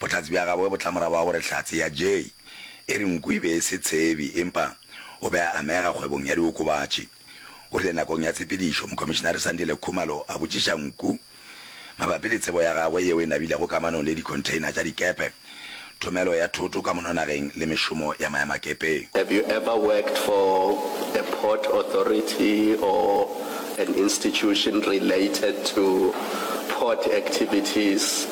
Bohlatse bja gabo bo tla morago ga gore Hlatse ya Jay e re nku e be e se tshebi empa o be a amega kgwebong ya diokobatši. O rile nakong ya tshepedišo, Mokomišinare Sandile Khumalo a botšiša nku mabapi le tsebo ya gagwe yeo e nabilego kamanong le dikhontheina tša dikepe, thomelo ya thoto ka mononageng le mešomo ya maemakepeng. Have you ever worked for a port authority or an institution related to port activities?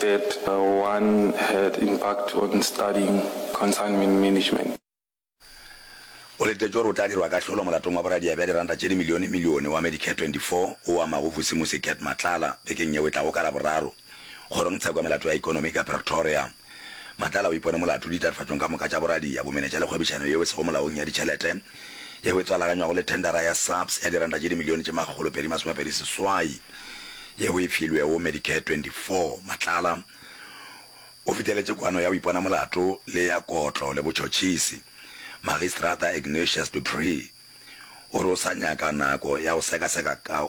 that one had impact on studying consignment management. O letetše gore o tla dirwa kahlolo molatong wa boradia bja diranta tše dimilione milione wa Medicare 24 o amago Vusimusi Gert Matlala bekeng yeo e tlago ka Laboraro kgorong tsheko ya melato ya ekonomi ka Pretoria. Matlala o ipone molato ditatofatšong ka moka tša boradia, bomenetša le kgwebišano yeo e sego molaong ya ditšhelete. yeo e tswalakanywago le thendara ya SAPS ya diranta tše dimilione tše makgolo pedi masomepedi seswai yeo e filwego Medicare 24. Matlala o fiteletše kwano ya go ipona molato le ya kotlo le botšhotšhisi. Magistrata Ignatius du Preez o re o sa nyaka nako ya go sekaseka ka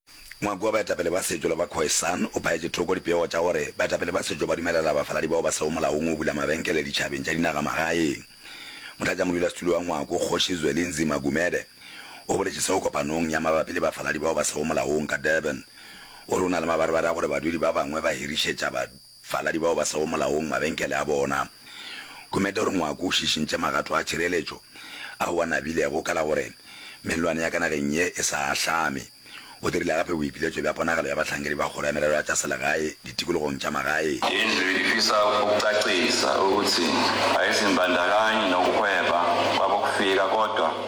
Ngwako wa baetapele ba setšo le ba Khoisan o phaetše thoko dipego tša gore baetapele ba setšo ba dumelela bafaladi bao ba sego molaong go bula mabenkele ditšhabeng tša dinagamagaeng. Motlatšamodulasetulo wa Ngwako, Kgoši Zwelinzima Gumede, o boletše seo kopanong ya mabapi le bafaladi bao ba sego molaong ka Durban. O re o na le mabarebare a gore badudi ba bangwe ba hirišetša Faladi bao ba sego molaong mabenkele a bona. Kumete o re ngwako o šišintše magato a tšhireletšo ao a nabilego ka la gore mellwane ya ka nageng ye e sa ahlame. O dirile gape boipiletšo bja ponagalo ya bahlankedi ba kgoro ya merero ya tša selegae ditikologong tša magae. Izwi lifisa ukucacisa ukuthi ayizimbandakanye nokuhweba kwabokufika kodwa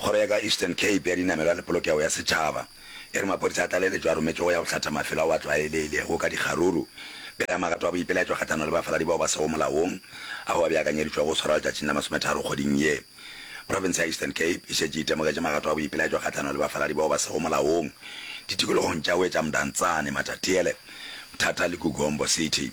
Kgoro ya ka Eastern Cape ya Dinamelwa le Polokego ya Setšhaba e re maphodisa a tlaleletšo a rometšwego ya go hlatha mafelo ao a tlwaelegilego ka dikgaruru pele ga magato a boipelaetšo kgahlano le bafaladi bao ba sego molaong ao a beakanyeditšwego go swarwa letšatšing la masometharo kgweding ye. Profense ya Eastern Cape e šetše e itemogetše magato a boipelaetšo kgahlano le bafaladi bao ba sego molaong ditikologong tša Wetša Mdantsane, Matatiele, Mthatha le Gugombo City.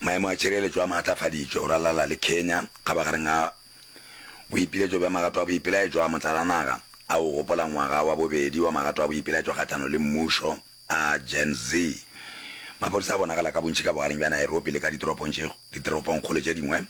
Maemo a tšhireletšo a maatlafaditšwe go ralala le Kenya kgabagareng ga boipiletšo bja magato a boipelaetšo a motlalanaga a go gopola ngwaga wa bobedi wa magato a boipelaetšo kgahlano le mmušo a Gen Z. Maphodisa a bonagala ka bontši ka bogareng bja Nairobi le ka ditoropongkgolo tše dingwe.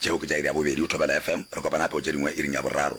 Tšeo ke tša iri ya bobedi go Thobela FM. Re kopana gape go tše dingwe iring ya boraro.